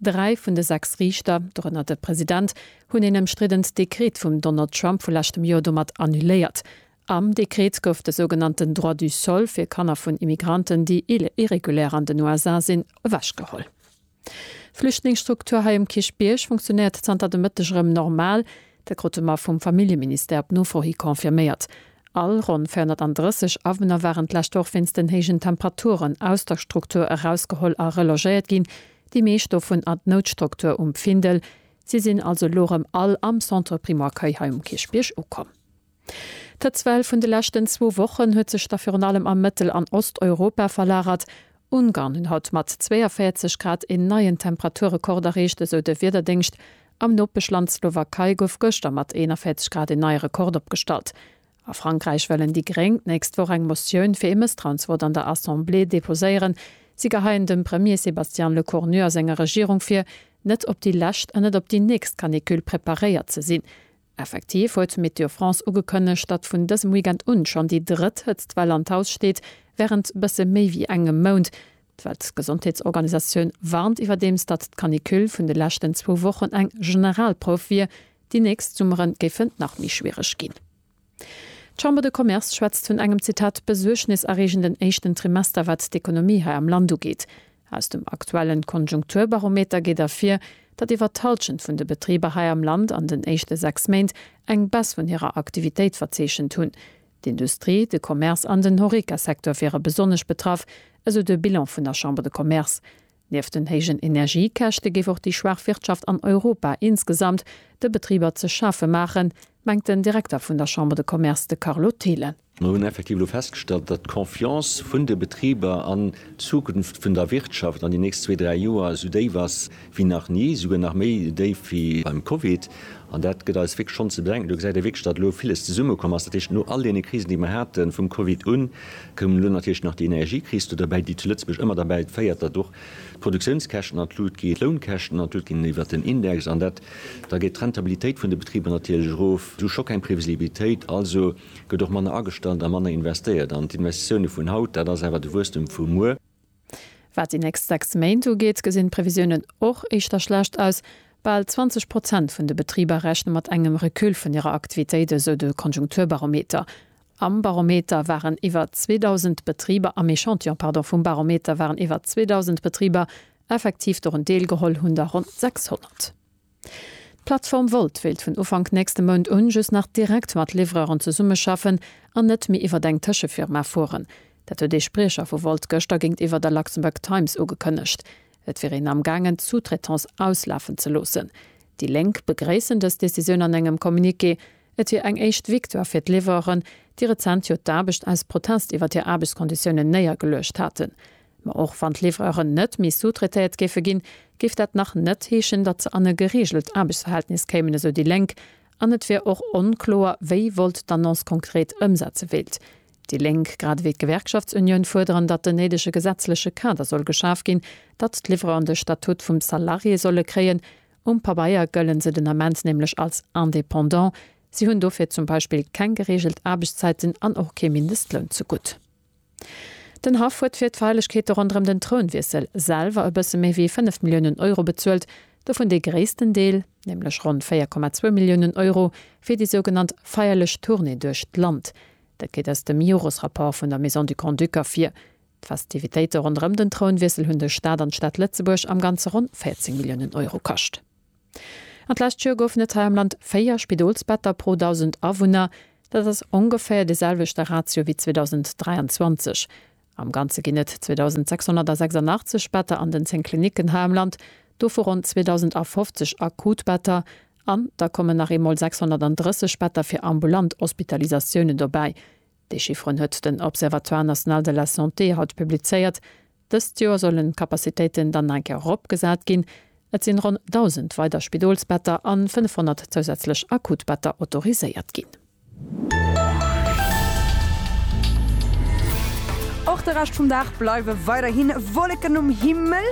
Dräi vun de sechs Riichter, dorënner de President, hunn een ëmstriddent Dekret vum Donald Trump vu leschtem Joer domat annuléiert. Am Dekret gouf de sougenannten Droit du sol fir Kanner vun Immigranten, déi irregulär an den USA sinn, ewechgeholl. D'Flüchtlingsstruktur hei um Kierchbierg funktionéiert zanter de Mëtteg erëm normal. Dat krute mer vum Familljeministère op Nofro hi confirméiert. All ronn 430 Awunner waren d'lescht Woch wéinst den héijen Temperaturen aus der Struktur erausgeholl a relogéiert ginn, Déi meescht dovun an d'Noutstruktur um Findel. Si sinn also elo erëm all am Centre Primo-Accueil hei um Kierchbierg ukomm. D'Hëtzwell vun de leschten zwou Wochen huet sech da virun allem a Mëttel an Osteuropa verlagert. Ungarn hunn haut mat 42 Grad een neien Temperaturrekord erreecht, esou de Wiederdéngscht. Am Nopeschland Slowakei gouf gëschter mat 41 Grad een neie Rekord opgestallt. A Frankräich wëllen déi Gréng d'nächst Woch eng Motioun fir ee Mësstrauensvott an der Assemblée deposéieren. Si geheien dem Premier Sébastien Lecornu a senger Regierung vir, net op déi lescht an net op déi nächst Canicule preparéiert ze sinn. Effektiv huet Météo France ugekënnegt, datt vun dësem Weekend un schonn déi drëtt Hëtztwell an d'Haus steet, wärend bësse méi wéi engem Mount. D'Weltgesondheetsorganisatioun warnt iwwerdeems, datt d'Canicule vun de leschten zwou Wochen eng Generalprouf wier. Déi nächst Summere géifen nach méi schwiereg ginn. D'Chambre de Commerce schwätzt vun engem, Zitat, besuergneserreegenden éischten Trimester, wat d'Ekonomie hei am Land ugeet. Aus dem aktuelle Konjunkturbarometer geet ervir, datt iwwer d'Hallschent vun de Betriber hei am Land an den éischte sechs Méint eng Baisse vun hirer Aktivitéit verzeechent hunn. D'Industrie, de Commerce an den Horeca-Secteur wiere besonnesch betraff, esou de Bilan vun der Chambre de Commerce. Nieft den héijen Energiekäschte géif och déi schwaach Wirtschaft an Europa insgesamt de Betriber ze schafe maachen, mengt den Direkter vun der Chambre de Commerce, de Carlo Thelen. Mir hunn effektiv elo festgestallt, datt d'Confiance vun de Betriber an d'Zukunft vun der Wirtschaft an déi nächst zwee, dräi Joer esou déif ass, wéi nach ni, esouguer nach méi déif wéi beim Covid. An dat gëtt eis wierklech schonn ze bedenken. Do gesäit ee wierklech, datt elo villes zesummekomm ass. Dat heescht, no all deene Krisen, déi mer haten, vum Covid un, koum elo natierlech nach déi Energiekris do derbäi, déi zu Lëtzebuerg ëmmer derbäi féiert, datt och d'Produktiounskäschten an d'Lut ginn, d'Lounkäschten an d'Lut ginn iwwert den Index. An dat, da geet d'Rentabilitéit vun de Betriber natierlech erof. Du scho keng Previsibilitéit, also gëtt och manner agestallt a manner investéiert. An d'Investitioune vun haut, dat ass awer de Wuesstem vu muer. Wat déi nächst 6 Méint ugeet, gesinn d'Previsiounen och éischter schlecht aus. Bal 20 Prozent vun de Betriber rechne mat engem Recul vun hirer Aktivitéit, esou de Konjunkturbarometer. Am Barometer waren iwwer 2.000 Betriber, am Echantillon, pardon, vum Barometer waren iwwer 2.000 Betriber effektiv dorun deelgeholl, hunn der ronn 600. D'Plattform Wolt wéilt vun Ufank nächste Mount un just nach direkt mat Livreuren zesummeschaffen an net méi iwwer eng Tëschefirma fueren. Dat huet ee Spriecher vu Wolt gëschter géintiwwer der Luxembourg Times ugekënnegt. Et wier een amgaangen d'Sous-traitance auslafen ze loossen. Déi Lénk begréissen dës Decisioun an engem Communiqué. Et wier eng éischt Victoire fir d'Livreuren, déi rezent jo d'Aarbecht aus Protest iwwer hir Aarbechtskonditiounen néiergeluecht haten. Ma och wann d'Livreuren net méi sous-traitéiert géife ginn, géif dat nach net heeschen, datt se an e gereegelt Aarbechtsverhältnis kéimen, esou déi Lénk. An et wier och onkloer, wéi Volt d'Annonce konkret ëmsetze wéilt. Déi Lénk grad ewéi d'Gewerkschaftsunioun fuerderen, datt den néidege gesetzleche Kader soll geschaf ginn, datt d'Livreuren de Statut vum Salarié solle kréien. Um Pabeier gëlle se den Ament nämlech als Indépendant. Si hunn dofir zum Beispill keng gereegelt Aarbechtszäiten an och kee Mindestloun zegutt. Den Haff huet fir d'Feierlechkeete ronderëm den Trounwiessel selwer e bësse méi wéi 5 Milliounen Euro bezuelt, dovun dee gréissten Deel, nämlech ronn 4,2 Milliounen Euro, fir déi sougenannt feierlech Tournée duerch d'Land. Dat geet aus dem Jores-Rapport vun der Maison du Grand-Duc ervir. D'Festivitéite ronderëm den Trounwiessel hunn de Staat an d'Stad Lëtzebuerg am Ganze ronn 14 Milliounen Euro kascht. An d'lescht Joer goufen et hei am Land 4 Spidolsbetter pro 1.000 Awunner. Dat ass ongeféier dee selwechte Ratio wéi 2023. Am Ganze ginn et 2.686 Better an den 10 Klinicken hei am Land, dovu ronn 2.050 akut Better. An da kommen nach eemol 630 Better fir ambulant Hospitalisatiounen dobäi. Déi Chifferen huet den Observatoire national de la santé haut publizéiert. Dëst Joer sollen d'Capacitéiten dann nach eng Kéier eropgesat ginn. Et sinn ronn 1.000 weider Spidolsbetter an 500 zousätzlech Akutbetter autoriséiert ginn. Och de Rescht vum Dag bleiwe weiderhi Wolleken um Himmel,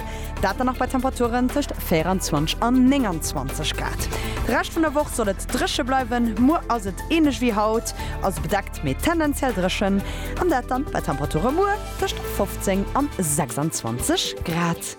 dat dann nach bei Temperaturen tëscht 24 an 29 Grad. De Rescht vun der Woch soll et dréche bleiwen. Muer ass et. Ähnlech wéi haut, also bedeckt, mee tendenziell dréchen, an dat dann bei Temperature muer tëscht 15 an 26 Grad.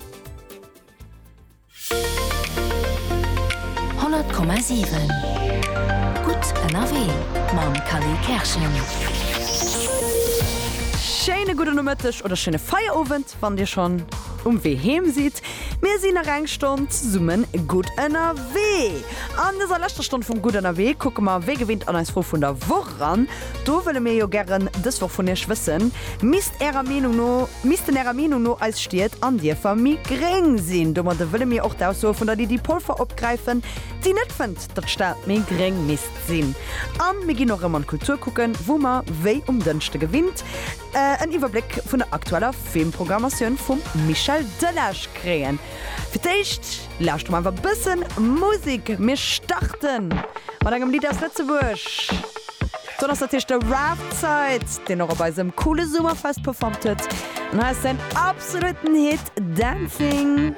Schéine gudde Nomëtteg oder schéine Feierowend. Wann dir schonn um Wee heem sidd, mir sinn nach eng Stonn zesumme gutt ënnerwee. An dëser leschter Stonn vum Gutt ënnerwee kucke mer wéi gewinnt an eis Fro vun der Woch eran. Do wëlle mir jo gären dës Woch vun iech wëssen, misst ärer Meenung no, missten ärer Meenung no eis Stied an Dierfer méi gréng sinn? Domadde wëlle mir och d'Aussoe vun der Lydie Polfer opgräifen, déi net fënnt, datt d'Stad méi gréng misst sinn. An mir ginn och erëm an d'Kultur kucken, wou mer wéi um Dënschde gewinnt En Iwwerbléck vun der aktueller Filmprogrammatioun vum Michel Delage kréien. Fir d'éischt lauschter mer awer bëssen Musik. Mir starten mat engem Lidd aus Lëtzebuerg. Dann ass natierlech de Raf Zait, deen och op eisem coole Summerfest performt huet. An hei ass säin absoluten Hit Dancing.